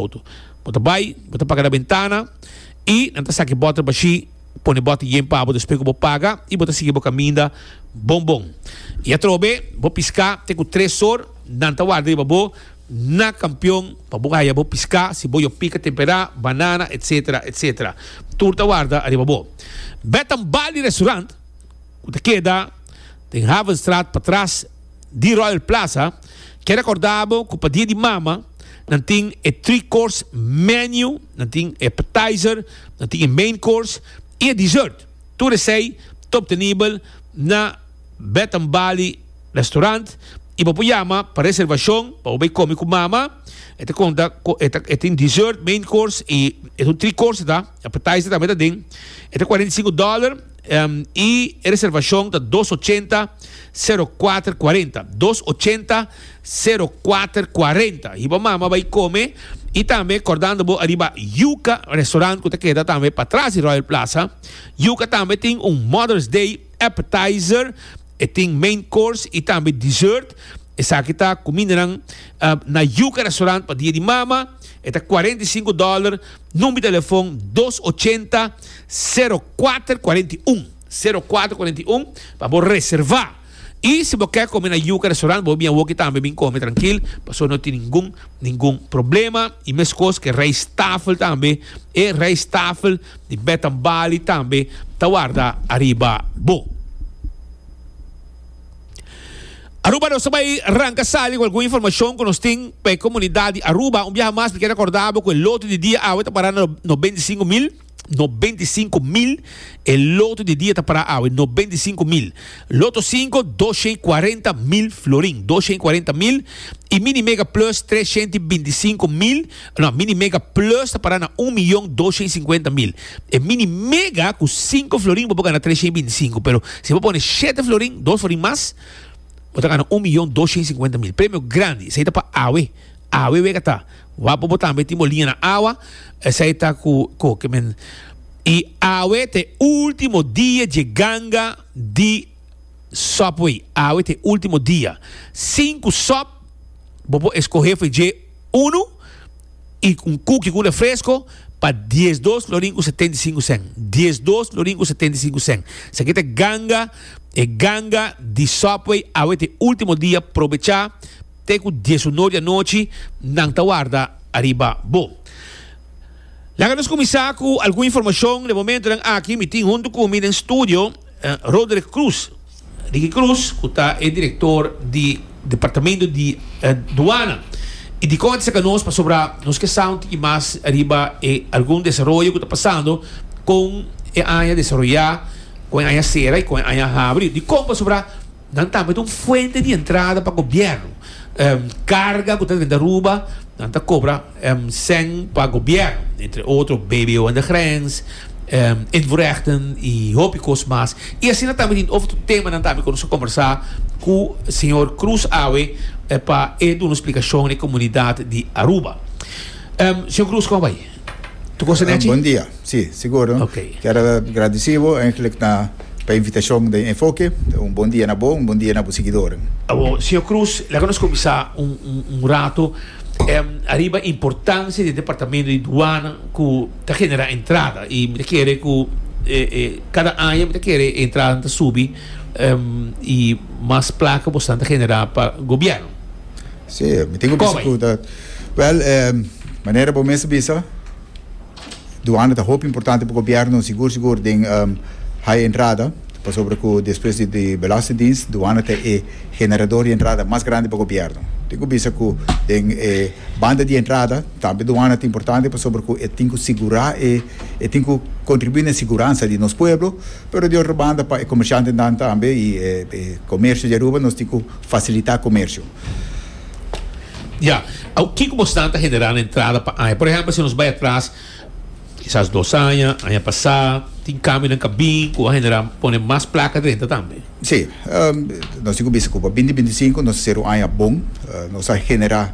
Auto. Bo ta bai, bo ta paga na bentana i nan ta saki bòter bashí, pone bòter yen pabo despues ku bo paga i bo ta sigui bo kaminda bon bon. I atrobe bo piská te ku tres or nan ta warda riba bo na kampion pa bo haya bo piská, si bo yo pika temperá, banana, etsetera, etsetera. Tur ta warda ariba bo. Bèt tambal di restorant. ku ta keda den Havenstraat patras di Royal Plaza, ke rekorda bo ku pa Dia di Mama nan tin e three course menu, nan tin e appetizer, nan tin e main course i e dessert. Tur esei ta obtenibel na Bath and Bali Restaurant i bo por yama pa reservashon pa bo bai komi ku Mama. E ta konta ku e ta e tin dessert, main course i e three course ta, appetizer tambe ta den. E ta kuarenta i sinku dòler. y e reservacion ta dos ochenta, sero kuater kuarenta, dos ochenta, sero kuater kuarenta. Hiba mama bai come y tambe kordando bo ariba Yuka restaurant cu ta keda tambe pa tras di Royal Plaza. Yuka tambe tin un Mother's Day appetizer. E tin main course y tambe dessert. Esaki ta cu mindenan na Yuca Restaurant pa dia di mama. E ta cuarenta y cinco dollar. Number di telefon dos ochenta, sero kuater kuarenta i un, sero kuater kuarenta i un, pa bo reserva. Y si bo ke come na Yuca Restaurant bo a bin awoki tambe bin come trankil pasobra no tin ningun. Ningun problema y meskos ke rijsttafel tambe, e rijsttafel di Bed and Bali tambe ta warda ariba bo. Aruba nos ta bay ranka sali cu algun informacion cu nos tin pa e comunidad di Aruba. Un biaha mas mi kier recorda bo cu e lote di dia awe ta para na no beintisingu mil. No beinti sinku mil e loto di dia ta pará awe, no beinti sinku mil. Loto sinku, dos shen i kuarenta mil florin, dos shen i kuarenta mil. I Mini Mega Plus, tres shent i binti sinku mil. No, Mini Mega Plus ta pará na un miyon dos shen i sinkuenta mil. E Mini Mega ku sinku florin bo por gana tres shen i binti sinku, pero si bo pone shete florin, dos florin mas, bo ta gana un miyon dos shen i sinkuenta mil. Premio grandi, esei ta pa awe. Awe wega ta wapo bo tambe tin bo liña na awa, esei ta ku koke men. I awe ta e ultimo dia dje ganga di Subway. Awe ta e ultimo dia. Sinku sop, bo por eskohe for dje unu i un kuki ku un refresko pa dies dos florin ku setenta i sinku sèn. Dies dos florin ku setenta i sinku sèn. Esaki ta ganga, e ganga di Subway. Awe ta e ultimo dia, probecha. Te ku dies uno di anochi nan ta warda ariba bo. Laga nos kuminsá ku algun informashon. Den momentunan aki mi tin huntu ku mi den studio Roderick Cruz, Ricky Cruz, ku ta e direktor di Departamentu di Duana. I dikon a ta saka nos pasobra nos ke sa un tiki mas riba e algun desaroyo ku ta pasando kon e aña desaroyá, kon e aña sera i kon e aña habri. Dikon? Pasobra. Nan tambe ta un fuente di entrada pa gobierno. Carga cu ta drenta Aruba, nan ta cobra cen pa gobierno, entre otro BBO en de grens, invoerrechten y hopi cos mas. Y asina tambe tin otro temanan tambe cu nos a conversa cu señor Cruz awe pa e duna explicacion na e comunidad di Aruba. Señor Cruz, como bai? Tu cosa ah, buen día. Sí, seguro. Okay. Quiero agradecido eigenlijk na pa invitación de Enfoque. Un buen día na bo, un buen día na bo seguidor. Abo, señor Cruz, la que nos comienza un, un, un rato um, arriba importancia del departamento de douane que te genera entrada y me quiere que eh, eh, cada año me quiere entrada te subir um, y más placa bastante generada para gobierno. Sí, mi tin ku bisa ku ta Wel, manera bo mes a bisa, duana ta hopi importante pa gobièrnu, sigur sigur den hai entrada, pasobra ku despues di belastingdiens, duana ta e generador di entrada mas grandi pa gobièrnu. Mi tin ku bisa ku den e banda di entrada tambe duana ta importante pasobra ku e tin ku sigurá e, e tin ku kontribuí na e siguransa di nos pueblo, pero di otro banda pa e komershantenan tambe i e komersio di Aruba nos tin ku fasilitá komersio. Ya, au kiko bo stanta generá na entrada pa aña? Por ehempel si nos bai atras kisas dos aña, aña pasá, tin kambionan ka bin ku a generá pone mas plaka drenta tambe? Sí, nos tin ku bisa ku pa binti binti sinku nos a ser un aña bon. Nos a generá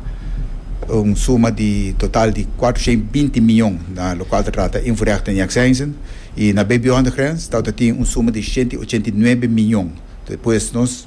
un suma di total di kuater honderd en binti mion na lo kual ta trata invoerrechten en exensen. I na BBO Hondergrense tabata tin un suma di honderd en ochenta i nuebe mion. Despues nos.